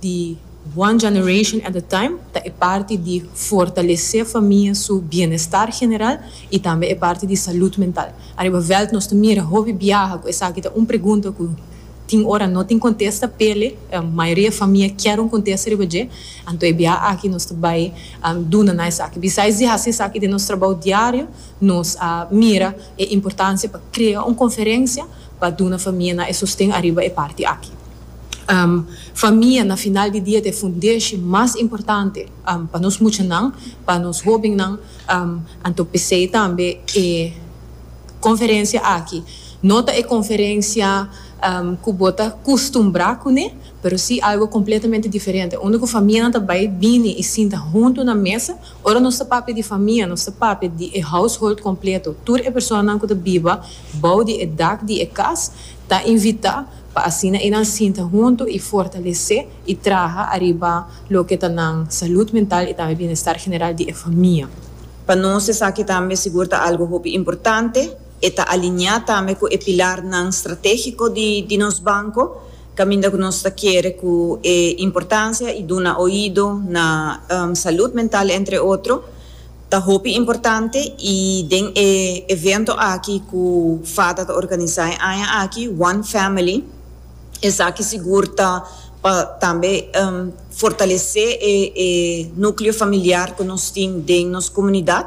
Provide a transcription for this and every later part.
di One Generation at a Time ta e parti di fortalesé famia su bienestar general i tambe e parti di salud mental. Ariba vèlt nos ta mira hopi biaha ku esaki ta un pregunta ku tin ora no tin kontesta p'e mayoria famia kier un kontesta riba dje. Anto e biaha aki nos ta bai duna na esaki. Bisais di hasi esaki den nos trabou diario, nos a mira e importansia pa krea un konferensia pa duna famia nan e sosten ariba e parti aki. Famia na final di dia ta e fundeshi mas importante pa nos muchanan, pa nos hobennan, anto p'esei tambe e konferensia aki no ta e konferensia ku bo ta kustumbrá kuné, pero si algu kompletamente diferente, unda ku famianan ta bai bini i sinta huntu na mesa. Ora nos ta papia di famia, nos ta papia di e household kompleto, tur e personanan ku ta biba bou di e dak di e kas. Ta invitá pa asina e nan sinta huntu i fortalesé i traha ariba loke ta nan salud mental i tambe bienestar general di e famia. Pa nos esaki tambe sigur ta algu hopi importante. E ta alineá tambe ku e pilarnan stratégiko di nos banko, kaminda ku nos ta kere ku e importansia i duna oido na salud mental entre otro. Ta hopi importante y den e evento aki cu Fata ta organiza e aña aki, One Family, esaki sigur ta pa tambe fortalece e nucleo familiar cu nos tin den nos comunidad,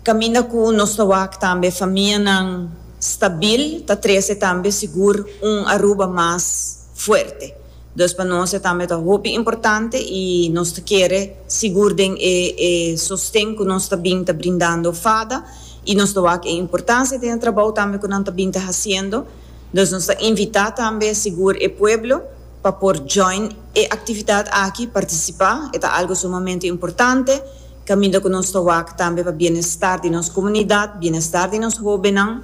caminda cu nos ta wak tambe famianan stabil, ta trece tambe sigur un Aruba mas. fuerte. Dus pa nos e tambe ta hopi importante y nos ta kere sigur den e e sosten cu nos ta bin ta brindando fada y nos ta wak e importancia den e trabou tambe cu nan ta bin ta haciendo. Dus nos ta invita tambe sigur e pueblo pa por join e actividad aki, participa, e ta algo sumamente importante caminda cu nos ta wak tambe pa bienestar di nos comunidad, bienestar di nos hobennan.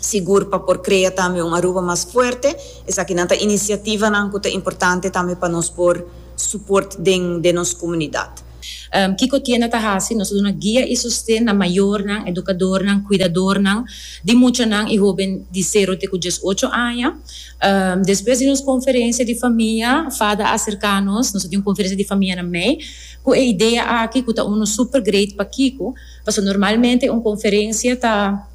sigur pa por krea tambe un Aruba mas fuerte. Esakinan ta inisiativanan ku ta importante tambe pa nos por suport den den nos komunidat. Kiko tienda ta hasi? Nos ta duna guia i sosten na mayornan, edukadornan, kuidadornan di muchanan i hoben di sero te ku dies ocho aña. Despues di nos konferensia di famia, Fada a aserká nos, nos a tin un konferensia di famia na mei, ku e idea aki ku ta unu super great. Pakiko? Pasobra normalmente un konferensia ta.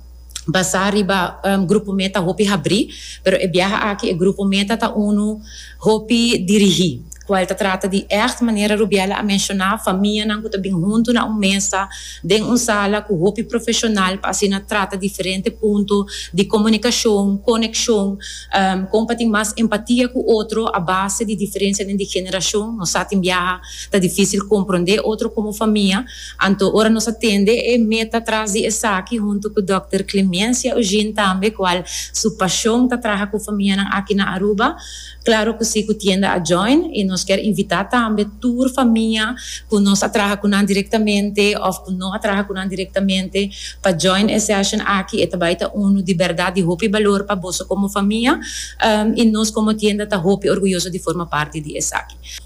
basá riba grupo mé ta hopi habrí, pero e biaha aki e grupo mé ta ta unu hopi dirigí, kual ta trata di ègt, manera Rubiela a menshoná, famianan ku ta bin huntu na un mesa den un sala ku hopi profeshonal pa asina trata diferente punto di komunikashon, konekshon, kon pa tin mas empatia ku otro a base di diferensianan di generashon. Nos sa tin biaha ta difísil komprondé otro komo famia. Anto ora nos a tende e meta tras di esaki huntu ku dòkter Clemencia Eugene tambe kual su pashon ta traha ku famianan aki na Aruba, klaro ku si ku tienda a join i nos kier invitá tambe tur famia ku nos a traha ku nan direktamente òf ku no a traha ku nan direktamente pa join e session aki e ta bai ta unu di bèrdat di hopi balor pa boso komo famia i nos komo tienda ta hopi orguyoso di forma parti di esaki.